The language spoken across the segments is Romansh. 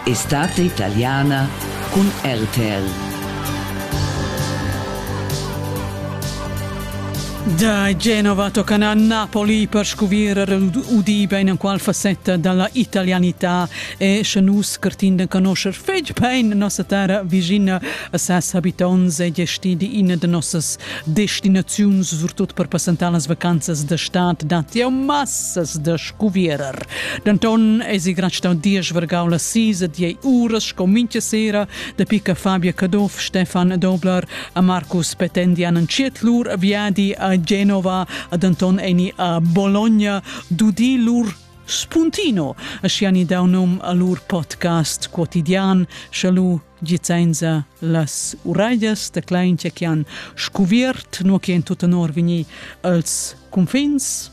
Estate italiana cun RTL. Da Genova toccano a Napoli per scuvrir udiva in qual facetta dalla italianità e sche nus curtin de conoscer fetg pein nossa terra vicina a ses habitonts e gestidi ina de nossas destinaziuns surtut per passentar las vacanzas de stad dat jau massas de guvierer. Denton eisi gracitau diesch vargau la sis e diei uras sco mintga sera dapi che Fabia Caduff, Stefan Dobler e Marcus Petendi han entschiet lur viadi a Genova ad Anton eni a Bologna d'udir lur Spuntino, ascia ni dau num a lur podcast quotidian, schalu gizenza las uraias da claintia che han scuviert, nu che in tut onor vini als confins,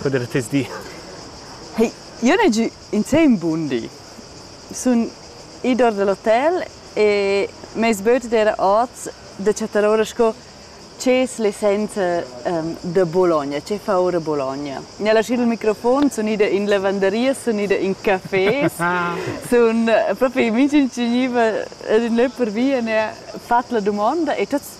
Guarda tes di. Hey, io n'he giü insem bun di. Sun id our da l'hotel e m'ais böt d'eira hoz da chattar oura sco ch'es l'essenza ehm, da Bologna, che fa oura Bologna. Gnà laschieu il microfon, sun ida in lavanderia, sun ida in café, sun propi minch'ün chi gniva ad ün lö pervia, n'ha fat la dumonda e tuots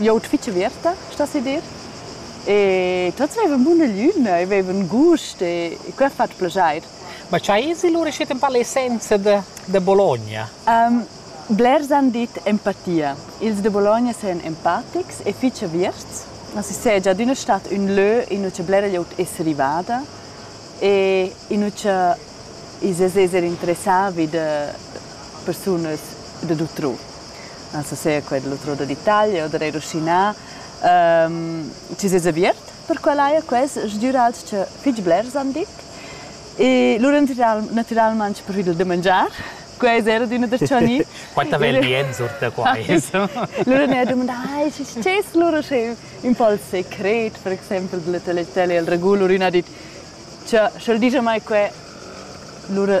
Jout fitg averta, sta se dir. E tots avevan buna lüna, avevan gust e que ha fatg plaschair. Ma cha esi lura schiet un po l'essenza da, da Bologna? Um, blers han dit empatia. Ils de Bologna sajan empatics e fitg averts. Si seja ad üna stat ün lö in ucha blera glieud es rivada e in ucha is es esser interessà vi da persunas da d'utrù. non so se quel l'otroda d'Italia o da Rusina, ehm, ti sez aviert per quell'aia quels sgürals cha fich blers han dit e lur natural, natüralmaing preferit il da mangiar. Quels era d'üna da Gianni. Quanta bel bien sort da quai. lura ne ha dumandà, ai, sches lura sche ün po il secret, per exempel della teletella il ragù, lura ün ha dit, cha sch'el digia mai que, lura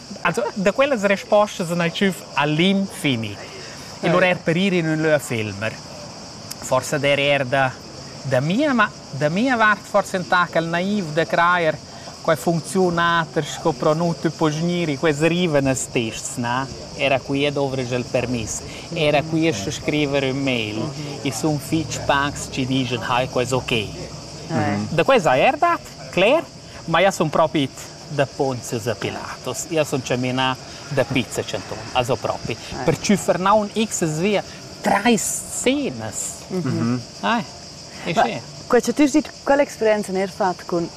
Also, da quellas respostas sun el tschüf a l'infini. E lura er per ir in ün lö a filmer. Forsa der eir da, da mia, ma da mia vart forsa entà ch'el naiv da crajer quai funcziunater sco pro nu tü po gnir in quels rivenas tests, na? Era qui dovresch el permiss. Era qui es da scriver ün mail. I sun fich pacs chi dischan hai quels ok. Da quai sai er dat? Cler? Ma ia sun propi it da ponzas a Pilatus. Ia sun chaminà da Pizza Centon, also propi. Ah. Per tschüffer naun xs via trais scenas. Mm -hmm. ah, è schön. Quella tu sei, quella esperienza ne hai fatto con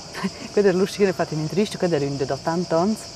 quella Lucia che ha fatto in intervista, quella era da tanti anni.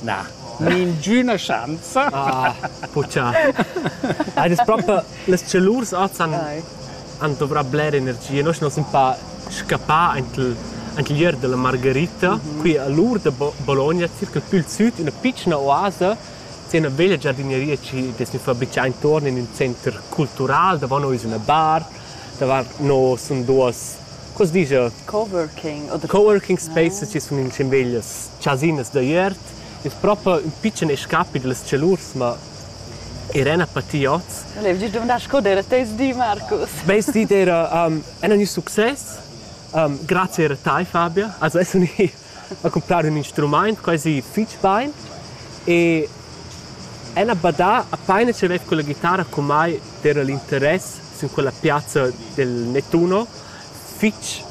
Na, ningüna schanza. Ah, puchà. Ai, das proper, las celurs oz han, han dovrà bler energia. Noi nos in pa scappà aint il, aint il ier della Margherita, qui a l'ur da Bologna, circa più il sud, una piccina oasa, c'è una veglia giardinieria ci des fabicà intorno in un centro culturale, davant noi es una bar, davant nos sun duos Cos disch eu? Coworking oder Coworking spaces chi sun in cimbeglias chasinas da iert. Es propa ün pitschen escapi da las tschelurs, ma i rena pa ti oz. Volev dir dumandar sco d'eira teis di, Marcus? Meis di d'eira um, ün success. Um, grazie era tai, Fabia. Also es uni accumplir ün instrumaint quasi fich bain e el ha badà apaina chi vaiva quella ghitarra cum mai d'eira l'interess sün quella piazza del Nettuno fich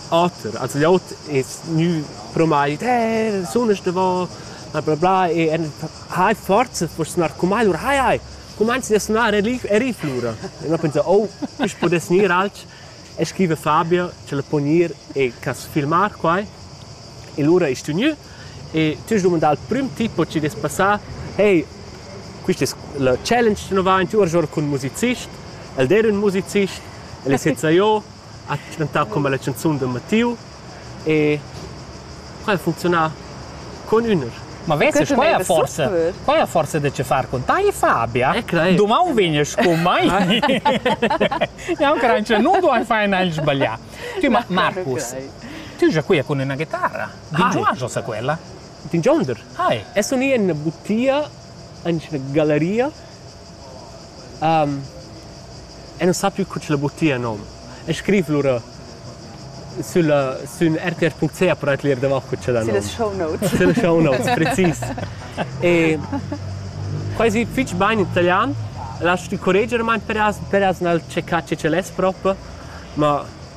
oter. Also gliot es gnü pro mai dit «Eh, sunas davò!» bla bla bla e el hai forza per sunar cum mai. Alura hai, hai, cumanzi da sunar e rif, e riflura. E no penso, oh, i's pudess gnir alch. e scriva Fabio che la po gnir e cas filmar quai. E lura ais tü gnü e tü has dumandà al prüm tipo chi dess passar, hey, quist es la challenge chi nu va in tü our giò cun musicist, el d'eira ün musicist, el es jet sà jo, ha chantà come la chanzun da Mattiu E quai ha funcziunà con üner. Ma vese, quai ha forsa, quai ha forsa da che far con tai, Fabia? Eh, crei. Dumau vegnes con mai? Ja, Crancia, non duai fare nel sbaglià. Tu, ma Marcus, tu già qui con una chitarra. Vingiuajo sa quella? Din Gender. Hi. Es un in butia, in galeria um, e non sappio cu ce la buttia nom. E scriv lura sulla, sün rtr.ch per atlir davart cu ce da nom. Sulle show notes. Sulle show notes, precis. E quasi fitch bain in italian, lasci correggere, ma per as, per as nal checcà ce ce l'es proprio, ma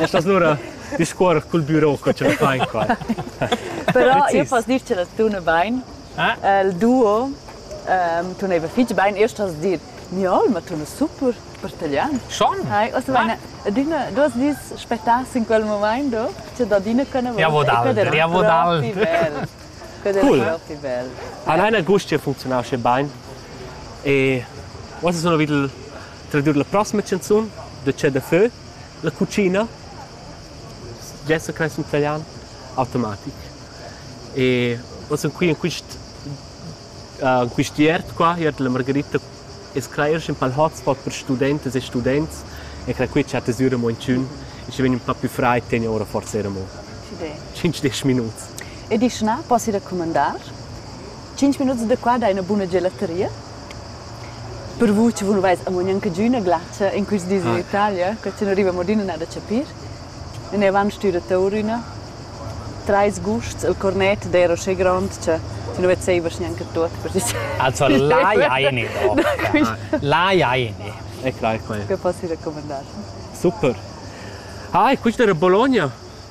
Estás lura discuor cul büro co che fain qua. Però io poss dir che las tune bain. Il duo tuneva fich bain. Io stos dir Niol, ma tuna super per taglian. Schon? Hai, os vaina adina dos dis spettà in quel moment do, che dadina kana vodal, vodal. Cool. Han einer gust che funzionau sche bain. E was sono vid Tradur la prossima chanzun da Che da fö, La cucina dessa cresce in italian automatic. E oz sun qui in quist uh, in quist iert qua, iert la Margherita es cleir ün pal hotspot per studentas e students e cra qui chatta sü amo inchün e schi vegn ün pa più fraid tegna ora forsa eir amo 5-10 minuts. E dischna, posso raccumandar? 5 minuts da qua dai üna buna gelateria? Per vus che vus veis amo gnanch'adüna glatscha in quist dis in Italia, que chi nu riva mo adüna nada chapir. In avant stüra Taurüna. Trais gusts, il cornet d'eira uschè grond cha tü nu vezzevas gnanca tuot per dis. Also l'ai aini do. L'ai aini. E quai quai. Que poss i raccumandar. Super. Ah, e quist era Bologna?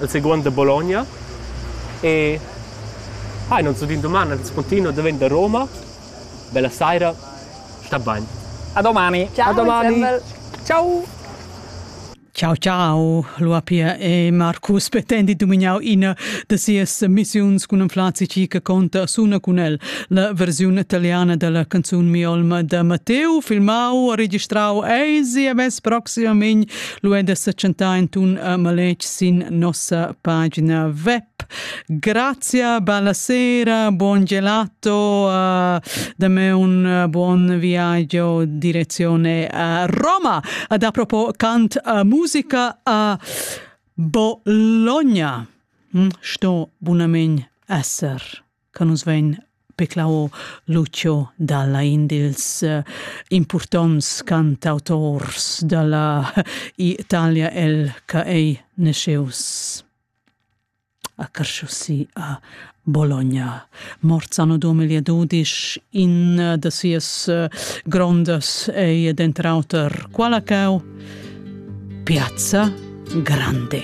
el seguond da Bologna e ha ah, in uns din doman al spontino da ven da Roma. Bella saira, sta bain. A domani. Ciao, a domani. Ciao. Ciao ciao Luapia e Marcus pretendi dumignau ina da sias missiuns cun un flazici che conta suna cun el la versione italiana della canzone Mi Olma da Matteo filmau e registrau ei CMS proximamein Lu è da setschentar in tun a maletg sin nossa pagina web. Grazia, bella sera, buon gelato, uh, da me un uh, buon viaggio direzione a Roma. Ad apropos cant a musica a Bologna. Hm, sto bunamen esser. che nus vein peclau Lucio dalla in dils uh, impurtonts cantautors dalla Italia el che ei nasceus a Carsciussi a Bologna. Morts anno 2012, in uh, da sias uh, grondas ei dentr auter quala cau Piazza Grande.